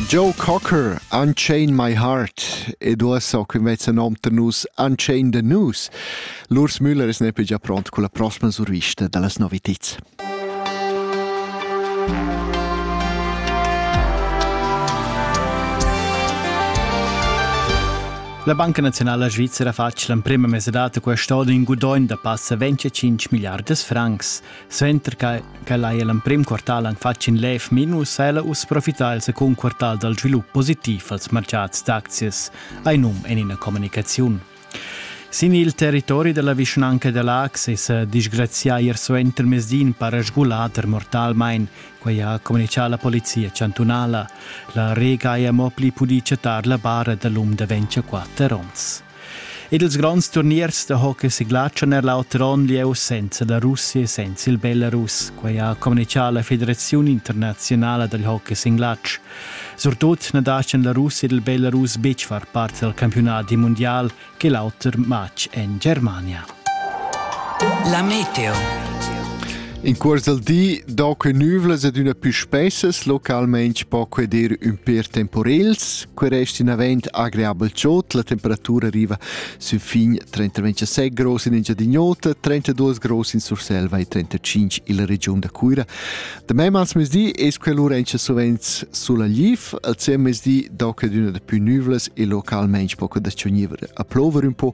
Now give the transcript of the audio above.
Joe Cocker, Unchain My Heart ed uossa qui mezza nom da nus Unchain da nus. Lurs Müller es neppe già pront con la prossima survista dallas noviteds. La Banca Nazionale Svizzera fa l'emprima mese data quest'anno in gudogn da passa 25 miliardas francs. Suenter ch'ella ha l'emprim quartal han fatg in lev minus ha ella uss profità il secund quartal dal svilup positiv als martgads d'aczias, hai num en ina communicaziun. Sin il territori della vischnanca da Lax è sa disgrazià ier suenter mezdin para sgulader mortalmain, quai ha communichà la polizia chantunala. La Rega ha mo pli pudì chattar la bara da l'um da 24 onns. Ed ils gronds turniers da hockey siglatschan er l'auter onn lieu senza la Russia e senza il Belarus. Quai ha communitgà la Federaziun internaziunala dal hockey singlatsch. Surtut na dastgan la Russia ed il Belarus betg far part dal campiunadi mundial che l'auter matg en Germania. La meteo. In cuors al di do que nüvlas ed üna pü spessas localmaing po que dir ün pêr temporels. Que resta inavent agreabel giot, la temperatura arriva sün fin 37 gros in Engiadin'Ota, 32 gros in Surselva e 35 illa regiun da Cuira. Da mei als mesdi es que lura encha sovents sulla Lif, al sem mesdi do que d'üna da pü nüvlas e localmaing po que da chogniver a plover ün po.